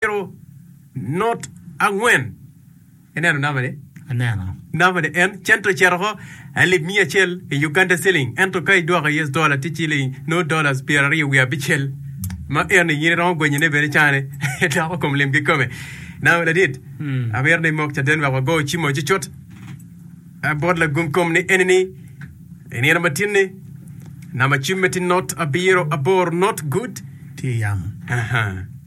Ero not angwen. Ineno namba ni? Aneno. Namba ni en cento cito ko alip miya acel i Uganda siling ento ka idwoko US dollar tye ciling no dollars pyer aryo wiye abicel ma eno in iromo gwenye ne bene cane doko kom lim kikome. Namba ladit. Mm. Amir ni mok caden wek wago cimo cucut. Abot lagum kom ni eni ni inino matin ni namba cim me ti not abiro abor not good. Ti yam. Aha.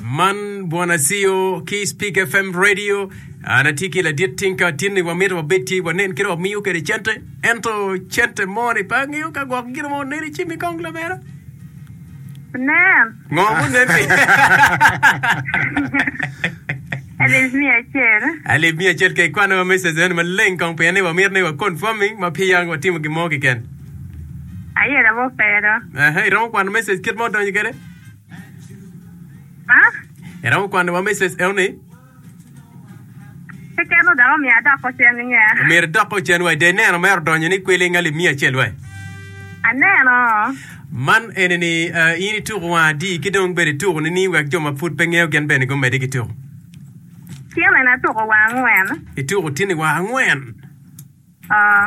Man Bwana Ceo ki Speak FM Radio. An atye ki ladit Tinka Tinni wamito wabed ci wanen kit wamiyo kwede cente. Ento cente moni pe angeyo ka gwok gin mo neri ci mi kong lamera. Nen. Ngo munen pi? Alip miya acel. Alip miya acel ke kwana wa message nen maleng kong pien ni wamito ni wa confirming ma pi yang watimo gin mo kiken. Aye labo pero. Aha, iromo kwano message kit mo donyo kede? Ha? Iromo kwano wa meses eoni? Keken o dok omiyo adok ocen i nge. Omyero idok ocen wa i de neno mere odonyo ni kwiling alip miya acel wa. Aneno. Man eni ni uh, in ituko wang adi ki dong bedi tuko ni ni wek jo ma pud pe ngeyo gen bene gumedi ki tuko. Tyene na tuko wang angwen. Ituko tyeni wa angwen. Oh.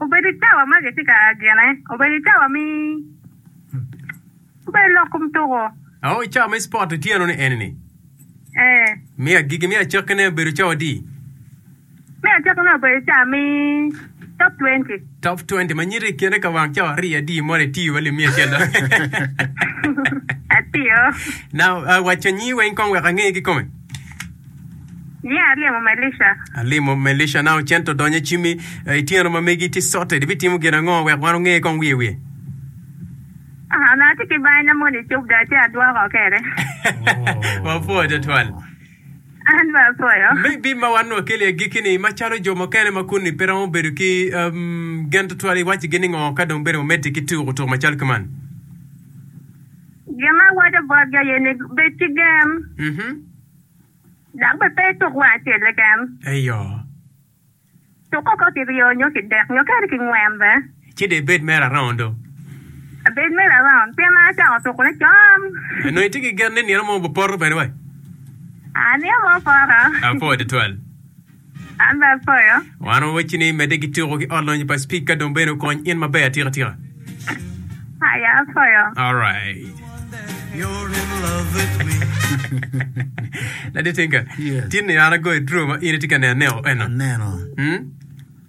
Obedo i cawa ma gitye ka gene. Obedo i cawa me obedo lok kom tuko. Aoo i cawa me spot otyeno ni eni ni. Ee. Me agikki me acakki ne obedo cawa adi? Me acakki ne obedo cawa me top twenty. Top twenty ma nyiti i kine ka wang cawa ariyo adi mono itiyo wa limi acel do. Atiyo. Na uh, wacca nyingi weng kong wek ange kikome. Yeah, alimo Melisha. Alimo Melisha now cento donyo icimi eh, ityeno ma megi tye sote, ibitimo gin ango wek wan onge kong wiye wiye? Ah, onongo atye ki bany na moni cub dong atye adwoko kede. Wapwoyo twatwal. An bene apwoyo. Me bim ma wan wakeli i agikki-ni, macalo jo mukene ma kunni pe romo bedo ki em, gen twatwal, iwaccigi ni ngo ka dong bene wamedde ki tuko tuko macalo ki man? Gin ma awaco botgi aye ni bed ki gen. Mhm. dok bene pe ituk wang acel keken. Eyo. Tuk koko kiryo nyo kidek nyo kadi kingwen be. Ci dong ibed mere around do. Abed mere around pien an acako tukone con. Nongo itye ki gen ni nino mo opoto kwede wa? Aa, nino mo opoto. Apo tutwal. Wan wawecci ni medde ki tuko ki ot lonyo pa Speaker dong bene okony in maber atika tika. Laditinga, tin ni an agoyo draw ma in itye ka neno aneko eno.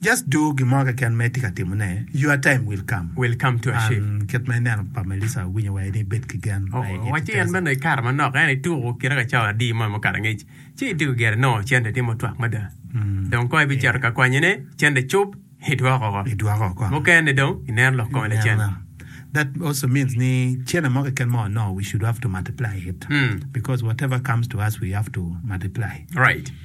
Just do gin mo keken ma itye ka timo ne, your time will come. Will come too Ashe. An kit ma ineno pa Melissa awinyo wa ini ibed ki gen ma i Wacci en bene i kare manok en ituku kite ka cawa adi mo mukato angec ci ityeko gire nongo cente tye mutwak mada dong kong ibiceto ka kwanyone cente cub idwoko oko idwoko oko mukene dong ineno lok kome lacen. Ineno la that also means ni cene mo keken ma wanongo we should have to multiply it because whatever comes to us we have to multiply. Right.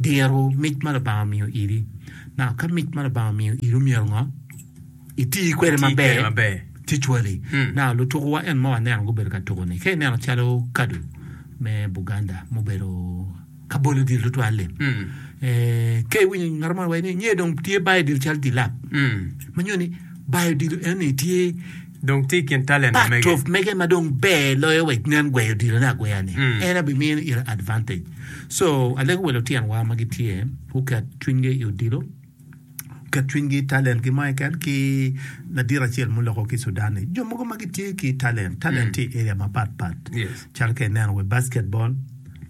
diro mic ma Lubanga omiyo iri. Now ka mic ma Lubanga omiyo iri myero ngo? Iti kwede maber. Usually now lutukuwa en ma waneno gubedo ka tuku ni ka ineno calo kadu me Buganda mubedo ka bolo odilo tutwal-li ka iwinyo ngat mo waci ni nge dong tye bayo odilo calo dilap ma nyuto ni bayo odilo eni tye dong tye i kin talenta mege. Patrov mege ma dong ber loyo wa nen gweyo odilo ne agweya ni mm. en abi mino ira advantage so alego wa lutyen wa ma gitye guket cwiny gi i odilo ket cwiny gi talent gi mo eken ki ladit acel muloko ki Sudan ni jo mogo ma gitye ki talent talent mm. tye i area mapat pat yes. calo ka ineno we basketball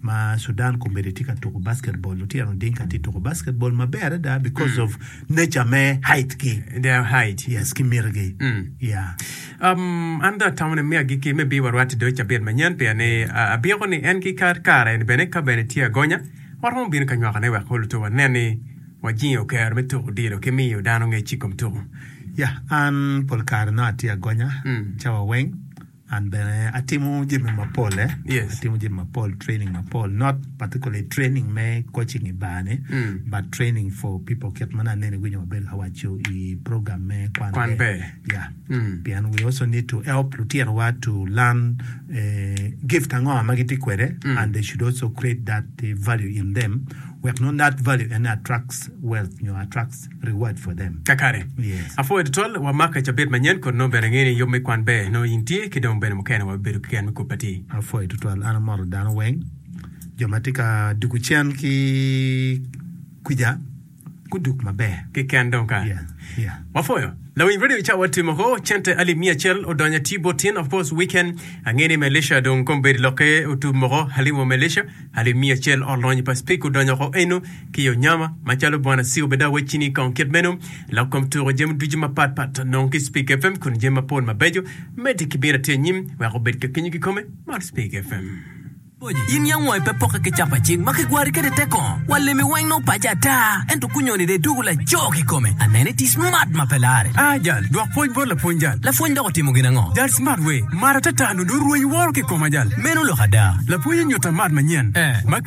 ma Sudan komedi tye ka tuko basketball lutino oding ka tye tuko basketball maber adada because of nature me height gi their height yes ki miti gi yeah Um, an dong atamo ni me agikki me bii warwat do cabit manyen pien ni a- abyeko ni en ki kar kare ni bene ka bene tye agonya waromo bino ka nywakone wek kong luto wanen ni wajingo kero me tuko odilo ki miyo dano ngec i kom tuko yeah an pol kare nongo atye agonya Mm. cawa weng An bene atimo jami mapol eh. Yes. Atimo jami mapol, training mapol, not particularly training me coaching i bar ni, Mm. but training for people kit ma aneno iwinyo maber ka waco i program me Kwan, Kwan Ber. Yeah. Mm. Pien we also need to help lutinowa to learn eh, gift ango ma gitye kwede Mm. and they should also create that eh, value in them wek nongo that value ene attracts wealth nyo attracts reward for them. Kakare. Yes. Apwoyo tutwal wa Mark cabit manyen kodi nongo bene angeyo ni yub me kwan ber nongo in tye ki dong bene mukene wa bibedo ki gen me kub atir. Apwoyo tutwal an amoto dano weng jo ma tye ka duku cen ki kwica guduk maber. Kiken dong ka. Yeah. Yeah. Wapwoyo. Lawiny radio ca watye moko cente alip miya acel odonyo ati bot tin of course weekend angeyo ni Malaysia dong kombedi lokke otubu moko haliwa Malaysia alip miya acel olony pa speak odonyo oko eno ki yo nyama macalo Bwana Sir Obedah Wec Cini kong kit meno lok kom tuko jami ducu mapat pat nongo ki Speak FM kun jami mapol mabeco medde ki bino atye anyim wek obed ka kenyo kikome man Speak FM. In ya ngo ipe poke ki capa cing ma kigwari kede teko wa lemi weng nongo pace ata ento kunyoni de idugu laco kikome anene iti smart ma pe lare a jal dwok pwoc bot lapwony jal lapwony dok otimo gin ango jal smart we mara tata nongo dong rweny woro kikoma jal meno lok ada lapwony onyuta mat manyen ma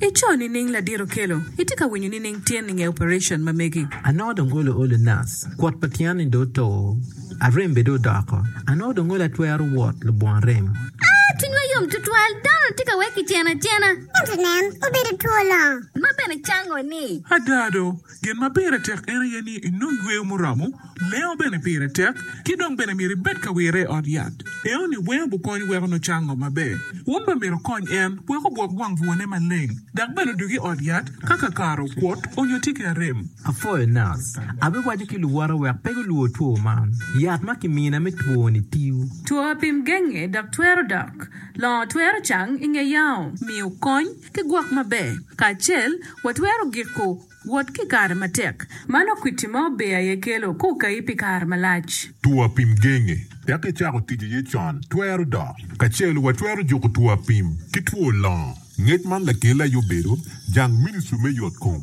Ico nining ladit okelo? Itye ka winyo nining tyen inge operation ma megi? Anongo dong olo olo nas. Kwot pa tyen ni dong oto. Arem bene dong odoko. Anongo dong olo atwero wot lubongo arem. Aa, cwinywa yom twatwal. Donald tye ka wek kiceno acena. Ento nen, obedo two longo. Ma bene cango ni. Ada do, Gin ma pire tek en aye ni inong yweyo muromo, lengo bene pire tek, ki dong bene myero ibed ka wire i ot yat. Enoni weng obukony weko nucang ngo maber. Wun bene myero wukony en wek ogwok wang bwone maleng, dok bene odug i ot yat ka kakare okuot onyo tye ki arem. Apwoyo nac. Abiwaco ki luwota wek pe gulwor two man. Yat ma kimina me twoni tiyo. Two apim genge dok twero dok. Longo twero cang i nge yao. Miyo kony. Ki gwok maber kacel, watwero giko wot ki kare matek ma nongo kwiti ma ober aye kelo ka okayi pi kare malac. Two apim genge wek icako tic iye con twero dok kacel. Watwero juko two apim ki two longo. Ngec man lakelle aye obedo jang ministri me yotkom.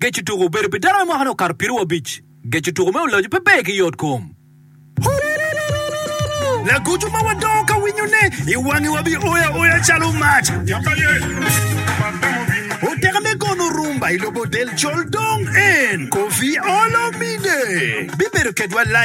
Geco tuko obedo pi dano me mwakane okato piero abic. Geco tuko me ulacu pe ber ki yot kom. Lagoco ma wadongo ka winyone, i wangi wa bi oyo aoya calo mac. Oteka me gono rumba i lobo del col dong en, Koffi Olomide, bibedo kedwa live.